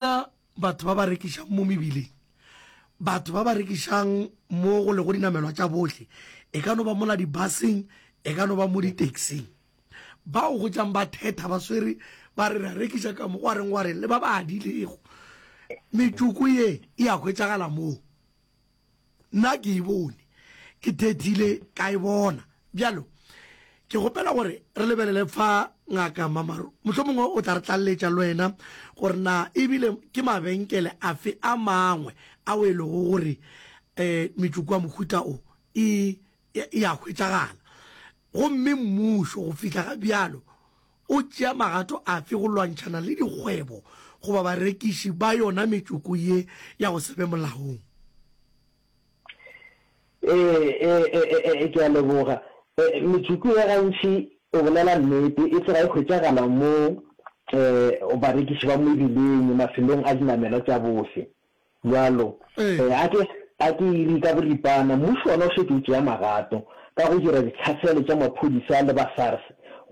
Gona batho ba ba rekišang mo mebileng, batho ba ba rekišang mo go lego dinamelwa tša bohle, e ka no ba mola dibaseng, e ka no ba mo ditaxing, bao go tšang ba thetha ba swere ba re re a rekiša ka mo, gwa reng gwa reng, le ba ba adilego metsoko ye e a hwetšagala moo. nna ke e bone ke thethile ka e bona bjalo ke gopela gore re lebelele fa ngaka mamaro mohlho mongwe o tla re tlalletša le wena gore na ebile ke mabenkele a fe a mangwe a o e lego gore um metsoko wa mohuta o e ya hwetšagala gomme mmušo go fihla ga bjalo O tšea magato afe go lwantšhana le dikgwebo goba barekiši ba yona metsoko ye ya go se be molaong? Ee, ke a leboga. Metsoko ye gantši, go bolela nnete, e tloga e hwetšagala mo barekiši ba mebileng, mafelong a dinamelwa tša bofe. Bjalo, ee, a ke, a ke e re ka boripana, mmušo wona o šetše o tšea magato ka go dira ditlhaselo tša maphodisa le ba SARS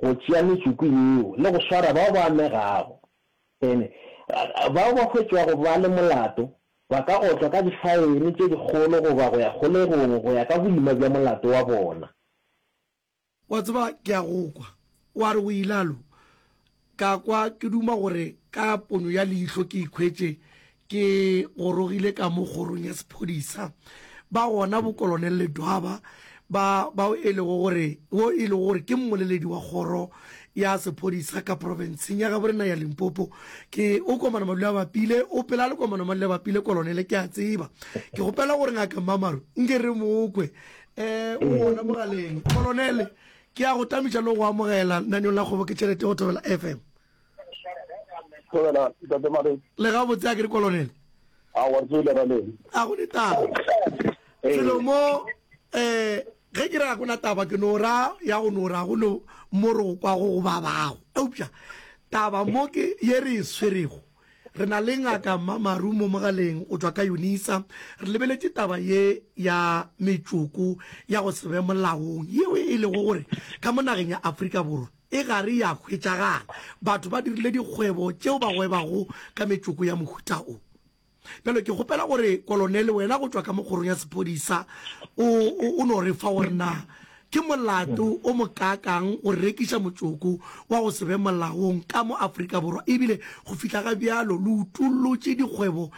go tšea metsoko yeo le go swara bao ba amegago. Ene, bao ba hwetšwago ba le molato ba ka otlwa ka difaene tše dikgolo goba go ya kgolegong go ya ka boima bja molato wa bona. Wa tseba, ke a go kwa. O a re o ilalo. Ka kwa ke duma gore ka ponyo ya leihlo ke ikhwetše ke gorogile ka mo kgorong ya sephodisa, ba gona bo Kolonel Ledwaba, ba, bao e lego gore, wo e lego gore ke mmoleledi wa kgoro ya sephodisa ka profenseng ya gabo rena ya Limpopo. Ke, o Komana Madulabapile, o pela le Komana Madulabapile, Kolonele, ke a tseba. Ke kgopela gore Ngaka Mmamaru nke re mo kwe. um o gona mogaleng kolonele ke ya go tametša le go amogela lenaneo la kgobo ke tšhelete go thobela fm le ga botse a ke re kolonele a go ne taba selo mo um ge ke ra gona taba ke no ra ya go no ra go no mo re go kwago go babago eupša taba mo ke ye re e swerego Re na le Ngaka Mmamaru mo mogaleng go tšwa ka Unisa. Re lebeletše taba ye ya metšoko ya go se be molaong yeo e lego gore ka mo nageng ya Afrika Borwa e gare ya hwetšagala. Batho ba dirile dikgwebo tšeo ba gwebago ka metšoko ya mohuta o. Bjalo ke kgopela gore Kolonele wena go tšwa ka mo kgorong ya sephodisa o no re fa gore na Ke molato o mokaakang go rekiša motsoko wa go se be molaong ka mo Afrika Borwa ebile go fihla ga bjalo le utollotše dikgwebo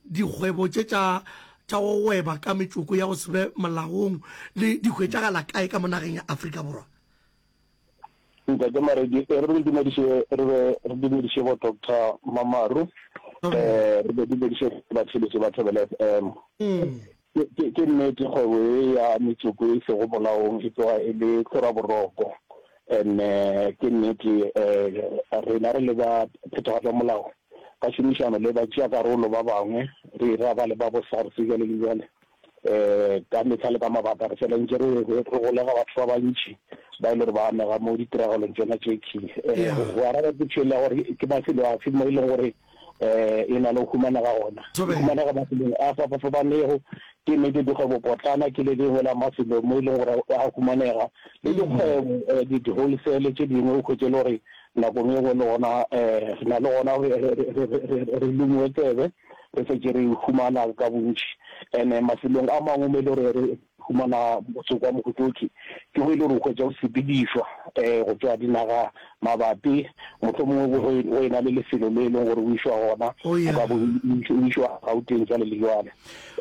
dikgwebo tše tša tša go gweba ka metsoko ya go se be molaong le di hwetšagala kae ka mo nageng ya Afrika Borwa? Ntate Maredi, e re dumediše re be re dumediše bo Doctor Mamaru, eh re be dumediše batheletši ba Thobela FM. Ke ke nnete kgwebo e ya metsoko e sego molaong e tloga e le tlora boroko, and ke nnete eh rena re le ba phethagatša molao ka šomišano le batšeakarolo ba bangwe re ira ba le ba bo SARS bjale le bjale Ka mehla le ka mabaka re fela ntše re golega batho ba bantši ba e le gore ba amega mo ditiragalong tšona tše key. Go araba potšo ya gore ke mafelo afe mo e leng gore e na le go humanega gona, e humanega mafelong a fapafapanego. Ke nnete dikgwebopotlana ke le lengwe la mafelo mo e leng gore a humanega, le dikgwebo di-wholesale tše dingwe o hwetše e le gore nako e nngwe le gona re na le gona re lemiwe tsebe. re šetše re e humana ka bontši. And-e mafelong a mangwe mo e le gore re humana motsoko wa mohutotši, ke mo e le gore o hwetša o sepedišwa um go tšwa dinaga mabapi, mohlomongwe go go e na le lefelo le e leng gore o išwa gona, Oh, yeah. ka bo o išwa Gauteng jwale le jwale.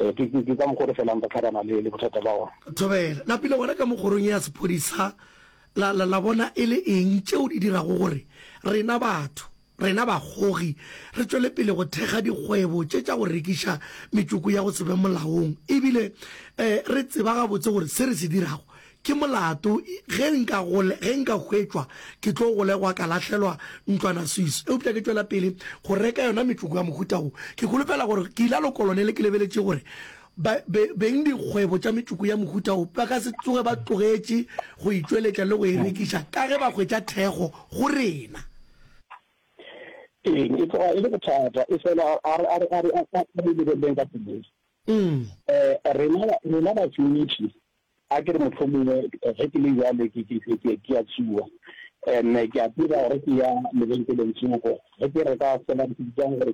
Um ke ke- ke ka mokgwa o re felang re tlhabana le le bothata ba gona. Thobela, lapile gona ka mo kgorong ya sephodisa, la, la, la bona e le eng tšeo di dirago gore rena batho Rena bagogi re tšwele pele go thekga dikgwebo tše tša go rekiša metsoko ya go se be molaong ebile re tseba gabotse gore se re se dirago ke molato. Ge nka ge nka hwetšwa ke tlo golegwa ka lahlelwa ntlwana Swiss eupša ke tšwela pele go reka yona metsoko ya mohuta wo. Ke holofela gore ke ilalo kolonele ke lebeletše gore ba beng dikgwebo tša metsoko ya mohuta wo ba ka se tsoge ba tlogetše go e tšweletša le go e rekiša ka ge ba hwetša thekgo go rena. Eng, e tloga e le bothata, efela a re a re a re a re lebeleleng ka pelong. Eh, rena rena batšweletši, a ke re mohlomongwe ge ke le bjale ke ke ke ke ke a tsuwa, and-e ke a tseba gore ke ya lebenkeleng tsoko ge ke reka fela ke gore ke